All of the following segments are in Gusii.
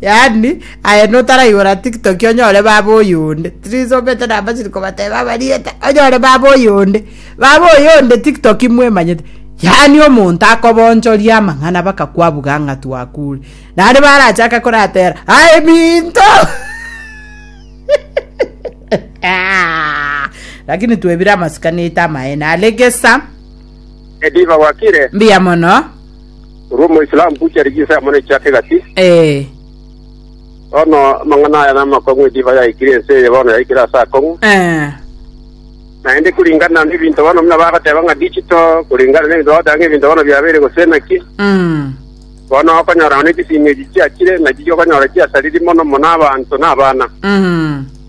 Yaani aye notaraigora tiktok onyore baba oyonde tirisomete namba chiri kobateba abariete onyore baba oyonde baba oyonde tiktok mwemanyete yaani omonto akobonchoria amang'ana baka kwabuga ng'a twakure nare barachaka koratera aye minto lakini twebire amasikani aito amaene are gesa Ediva wakire? mbuya mono Korwa Omoislamu gochia rigisa ya Monene chiake egati. Ee. Bono amang'ana aya namakong'u edivai yaikire ense eye bono yaikire ase akong'u. Ee. Naende kuringana nebinto bono buna bagoteba ng'a digital, kuringana nebinto bagoteba ng'a ebinto bono biabeire gose naki, Mm. bono okonyora nonye chisimi echi chiachire, nachiche okonyora chiasariri mono mono abanto na abana. Mm.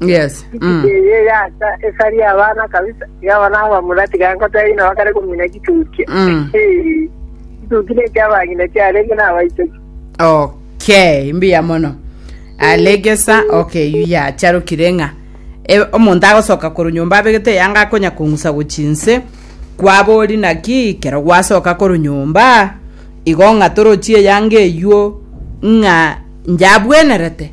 yes mm. Eye yasa esari yabana kabisa yabana abamura tigankota ina bakare kumina kituki. Mm. Eh. Kituki ne kyabangina kyarenge na abaitoki. okay mbuya mono alegesa okay yu yacharokire ng'a e, omonto agosoka koru nyomba abegete yanga akonya kong'usa gochinse kwabori naki kero gwasoka koru nyomba igo ng'a torochie yanga eyuo ng'a njabwenerete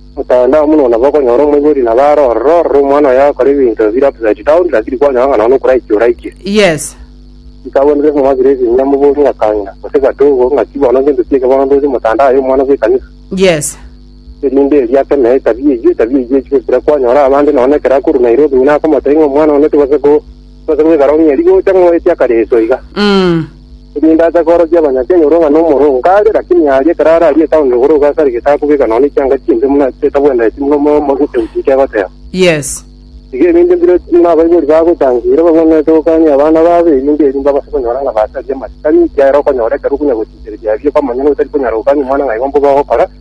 Mokogenda amo nonya bakonyora omoibori na bare ororo ororo omwana oye agakora ebinto bire upside down lakini kwanyora ng'a nonya okoraikia oraikia. Yes. Nkabwate Jesu ng'a osirie ebinyia moborie ng'a kang'ina gose gatogo ng'aki bono gento ki eke bono ntoche motandao aye omwana bwe ekanisa. Yes. Erinde erio ake naye etabia eyio etabia eyio echwe ekira kwanyora abande nonya ekero akorwa Nairobi buna akomotebia ng'a omwana one tibasa ko tibasa goikara ong'e rigocha ng'oetie akareso iga. Mm. erinde ache koorokia Abanyakenya orua ng'a nomoro oo nkare, lakini aria ekero ararie etaoni igoro iga ase are gesaku geka nonya chianga chimbe buna ase etabwenereti buna omoyo omo goseguswa eke agoteba. Yes. Iga erinde mbire buna abaibori bagotanga ira babwenerete gokania abana babo erinde erio mbabase konyora ng'a basaria amatuko ang'e ekiagera okonyora ekero okonya gosinchereria aria ekwamanyana otari konyara gokania omwana ng'a igo mbobe ogokora,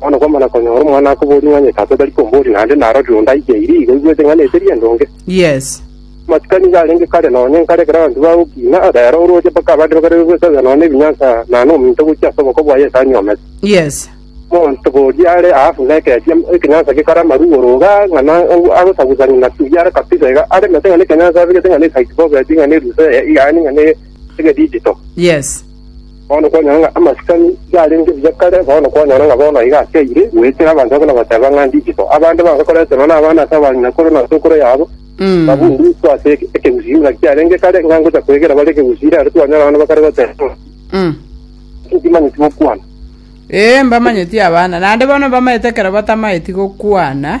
Bono kwamana konyora omwana akoboria ng'a onye tata tari komboria naende narorire onde aigeire igo aigwete ng'a neteri endonge. Yes. Amatuko nigo arenge kare nonya nkare ekero abanto bagokina, rero oroche mpaka abande bakarerwe gwesabera nonya nebinyansa na nominto gochia ase oboko bwaye ase anyomete. Yes. Monto boria are aafu na ekesia ekenyansa gekore amaru oro iga ng'a na agosagusania na tuya are kabisa iga aremete ng'a nekenyansa abegete ng'a ne site bob ati ng'a ne ruse yaani ng'a ne egedigital. Yes. Bono kwanyora ng'a amasikani yarenge buya kare, bono kwanyora ng'a bono aiga akeire, goetera abanto abwo na goteba ng'a ndichiko. Abande bange koreta nonya nabana ase abanyinakuru na ase okoro yabo, babundutwe ase ekegusii ng'a kiarenge kare, ng'a ngocha kwegera bare ekegusii ira aro twanyora abana bakare goteba ng'a, Inki timanyeti gokwana? Ee, mbamanyeti abana, naende bono mbamanyete ekero batamaeti gokwana,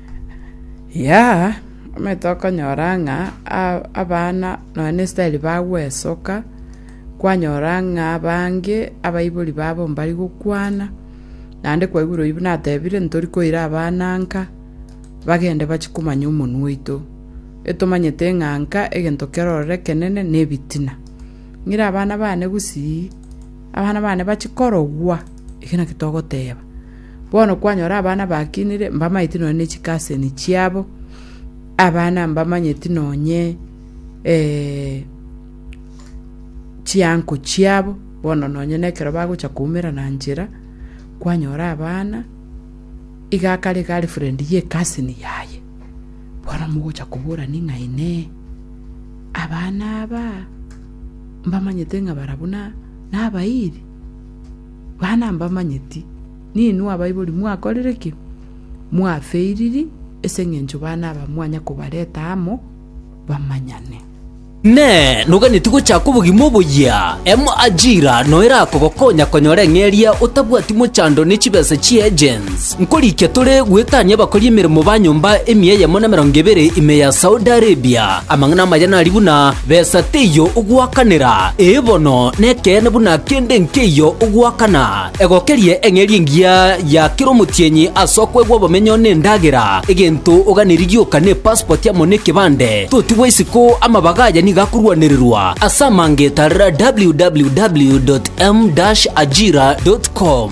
Yea, omanyete okonyora ng'a a- abana nonya na esitaeri bagwesoka, kwanyora ng'a abange abaibori babo mbari gokwana, naende kwaigure oyio buna atebire ntori koira abana nka, bagende bachie komanya omonwe oito. Etomanyete ng'a nka egento kero ororo ekenene na ebitina. Ng'ire abana bane gusii, abana bane bachie korogwa, eke naki togoteba. Bono kwanyora abana bakinire, mbamanyeti nonya ne chikaseni chiabo, abana mbamanyeti nonye eh, chianko chiabo, bono nonye na ekero bagocha koumera na nchera, kwanyora abana, iga akare girlfriend ye cousin yaye, bono mogocha koborani ng'a inee, abana aba, mbamanyete ng'a barabwo na, nabairi. Bana mbamanyeti, ninwe abaibori mwakorire ki? Mwafeiriri ase engencho bana aba mwanya kobareta amo bamanyane. Inee! Noganetie gochaka obogima oboyia? Emo ajira noyo erakogokonya konyora eng'eria otabwati mochando ne chibesa chi'agents. Nkorikia tore gwetania abakori emeremo ba nyomba emia eyemo na emerongo ebere ime ya Saudi Arabia. Amang'ana amaya nari buna, Besa teiyo ogoakanera, ee bono, nekeene buna akende nkeiyo ogoakana. Egokerie eng'eria engiya ya kera omotienyi ase okoegwa obomenyo nendagera, egento oganeri gioka ne pasipoti amo nekebande. Totigwa isiko, amabaga aya nigo akorwanererwa ase amangeta www.m-ajira.com.